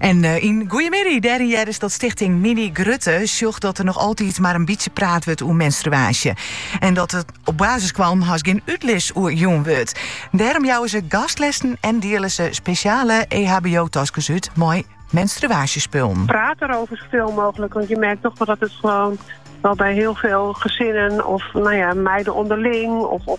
En eh, in goeie middei, de reden hjir is dat stichting Mini Grutte sjocht dat er nog altyd mar in bytsje praat wurdt oer menstruaasje. En dat der op basiskwallen haast gjin útlis oer jûn wurdt. Dêrom jouwe ze gastlessen en dielen ze spesjale EHBO-taskes út mei menstruaasjespullen. Praat erover zoveel mogelijk, want je merkt toch dat het gewoon wel bij heel veel gezinnen of nou ja, meiden onderling of, of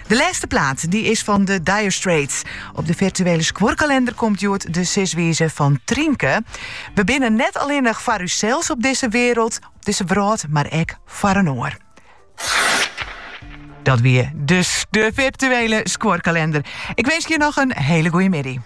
De lêste plaat dy is fan de Dire Straits. Op de virtuele skuorkalender komt hjoed de siswize fan Trynke. We binne net allinnich foar ússels op dizze wereld, op dizze wrâld, mar ek foar in oar. Dat wie dus de virtuele skuorkalender. Ik winskje je noch in hiele goeie middei.